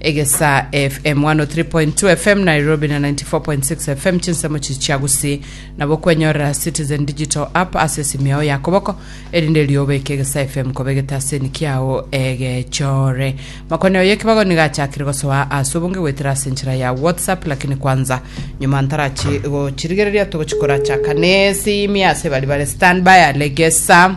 Egesaa FM 103.2 FM Nairobi na 94.6 FM chinsemo chi chia Gusii nabo okwenyorera Citizen Digital App ase esimi yao ya koboko erinde erio obeke Egesaa FM koba egetaseni kiao egechore. Makoni oyo ekibago niga achakire gosoa ase obonge goetera ase enchera ya WhatsApp lakini kwanza nyuma ntarachi gochirigereria togochikora chaka nesimi ase bari bare standby ale Gesaa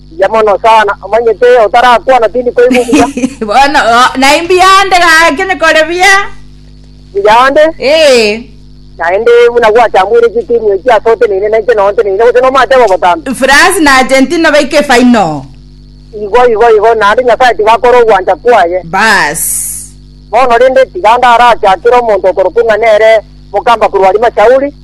Mbuya mono sana, omanyete otarakwana tindi koigwa obuya. Bono o- naye mbiyande gake nikore buya. Mbuya ande, Eh, naende buna gwachamwire chitimu echi ase oteneine na inche noteneine gose nomateba obotambe. France na Argentina baike final. Igo igo igo, naende Nyasaye tigakora ogwancha kwaye. Bas. Bono rende tiga ndarachakere omonto okorokwa ng'a nere mokamba korwa Arima Shauli,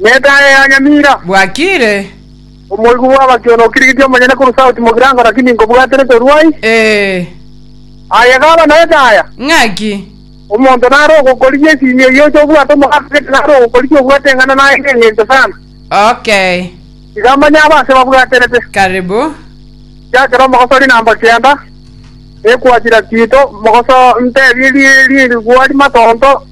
Netaaya ya nyamira. Bwakiire. Omoigwa bw'abakiono okirigiti omonyene korwa sauti mogirango naki ninkobwatire torwai? Ee. Aye gaba netaaya. Ng'aki? Omonto nare ogokorigia esiimi eyio oche obwate omogaka gete nare ogokorigia obwate eng'ana naye ng'engencho sana. Okay. Iga manye aba ase babwaterete. Karibu. Chiakera omogosori na mba kianda, ekwachira kiito, mogoso ntebie ri rigwa rimatonto,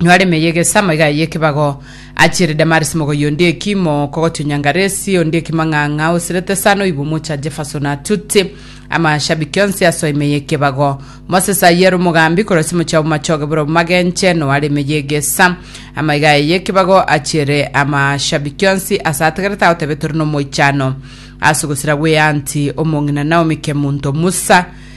Inwe are emeye egesa amaiga aye ekebago, achiere Damaris mogoyi onde ekimo, kogotio nyangaresi, onde ekimo ng'ang'a, osirete sana oibwe omocha Jefferson atute amashabiki onsi asoa emeye ekebago. Moses aye ere omogambi korosia omochie obo machoge bore obo magenche, noe are emeye egesa amaiga aye ekebago, achiere amashabiki onsi ase ategerete agotebe tore nomoichano ase ogosira gw'eanti omong'ina Naomi Kemunto Musa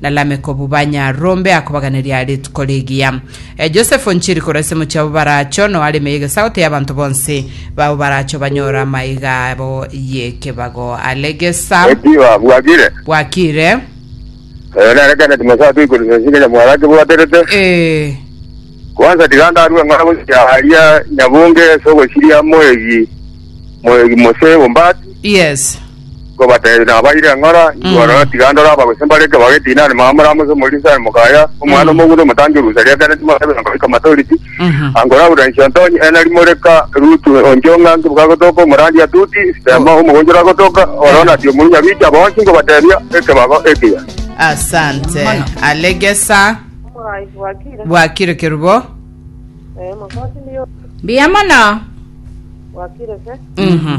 na Lameki obobanya, rombe akobaganeria rituko rigiya. E Josefu nchiri korwa ase mochie abo baracho, no aremeye egesagote y'abanto bonsi babo baracho banyore amaiga abo y'ekebago. Are gesa. Eki ba- bwakire. Bwakire. Eh, nere Kenneth Masato oikore sense ng'a nyamwaro ake bwaterete. Eh. Kwanza tiga ndarue ng'a gochia aria nyabunge ase ogosiria moegi moegi mose ombati. Yes. Nkobateebia, nabaire ng'ora, Inchuo rora, tiga ndore aba gose mbare ekebago etinani, mama moramose omorisia aye mokaya, omwana omogundo omotangi orusa ria kera timorabe nkoba ikomatoriti, ankoraurera inchio ntonye, ena rimoreka Rutu onchio ng'a nkibuka agotoka omorandia atuti, sitema omogonchoro agotoka, oro nabi omurunya bicha, bonsi nkobateebia, ekebago ekiya. Asante. Mono. Alegesa. Omoraai bwakire. Bwakire kerubo. Eh, makoti ndiyo. Mbuya mono. Bwakire se. Mhm.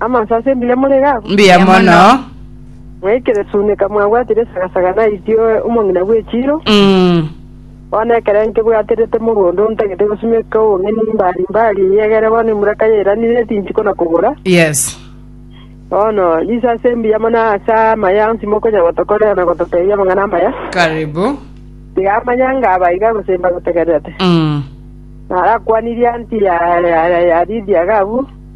Amanso ase mbuya morere abwo? Mbuya mono. Mwaikire sune kamwabwatire esagasaga naitio omong'ina bw'echiiro, Mm. bono ekero nkebwaterete morwa onde ontagete gosimeka obong'aini mbari mbari, egere bono emura kayairanire ase inchiko na kobora, Yes. bono riso ase mbuya mono ase amaya onsi mokonya gotokorera na gototebia amang'ana amaya, Karibu. tiga amanyanga aba iga gose mbagotegererete. Mm. Narakwanirie anti ya, ya, ya, ya Lidia gabu,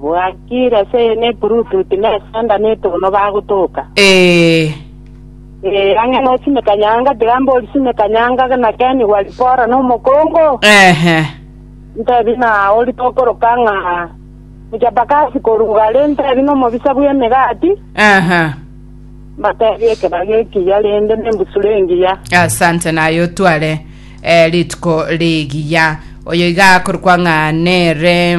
Bwakire ase eye ne Bluetooth na esanda na etono bagotoka. Ee. Ee, ang'e no sime kanyanga, tiga mbori sime kanyanga na Ken Walibora na omokongo. Ehe. Ntebi na ori tokoroka ng'a muchapakasi korwa gare, ntebi na omobisa bw'emegati, Ehe. mbatebi ekebago ekiya rende ne embusuro engiya. Asante naye otware eh, rituko rigiya. Oyo iga akorokwa ng'a nere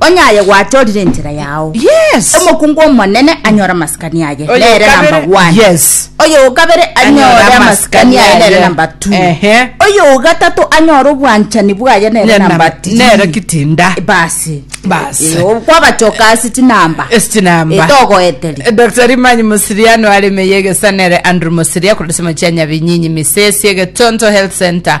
Onye aye gwatorire enchera yao. Yes. Omokungu omonene anyore amasikani aye Oyo nere okabere. number one. Yes. Oyo okabere Anyore anyore amasikani amasikani aye nere aye. number two. Ehe. Oyo ogatato anyore obwanchani bwaye nere Nere number number- three. nere kitinda. Basi. Basi. Eh, o- kwabachoka ase chinamba. Estinamba. Eh, togoeteri. Dr. Rimanyi Musiriano aremeye egesanere Andrew Musiria korosema chia Nyabinyinyi Misesi egetonto Health Center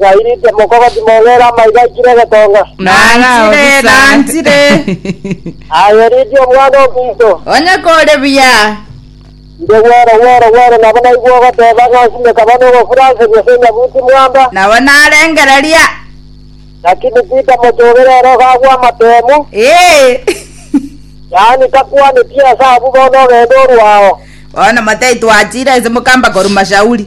Gairite mokogoti mogere amaiga aikire egetonga. Nanchire, nanchire. Aye riidia omwana ominto. Onye kore buya. Inde Wero, Wero, Wero, nabo naigwe ogoteba ng'a nsime kaba nogofuranseria ase enyabuti mwamba. Nabo narengereria. Lakini Peter mochogera ere ogagwa amatemu. Ee. Yaani takwaneti ase abwo bono ogende orwe ao. Bono motaitwa achire ase mokamba koruma Shauli.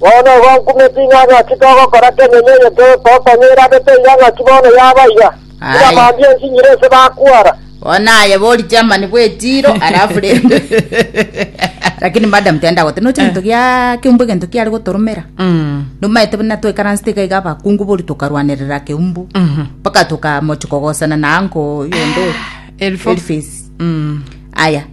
Bono igo nkumeti ng'a ng'aki togokora kenyene eye togotonya erande toira ng'aki bono yaba iga, Aye. tiga mambia ensinyiro ase bakwara. Bono aye bori chairman bwe Tiro alafu rende lakini madam tenda gote noche gento gia keumbu gento kiare gotoromera Mm. nomaete buna twekaransete iga iga abakungu bori tokarwanerera keumbu Mhm. mpaka tokamochi kogosana na anko yonde Elfo. Elfis. Mm. aya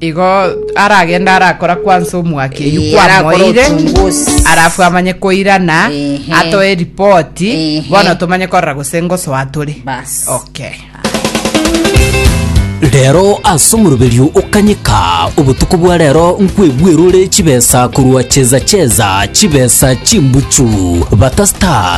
Igo aragende arakora kwansa omwaka eyio Eh, arakora kwamoire ochunguzi. arafu amanye koirana Ehe. atoe ripoti Ehe. bono tomanye korora gose ngosoa tore Bas. okay rero ase omoroberio okanyeka obotuko bwa rero nkwebwerore chibesa korwa cheza cheza chibesa chimbuchu bata star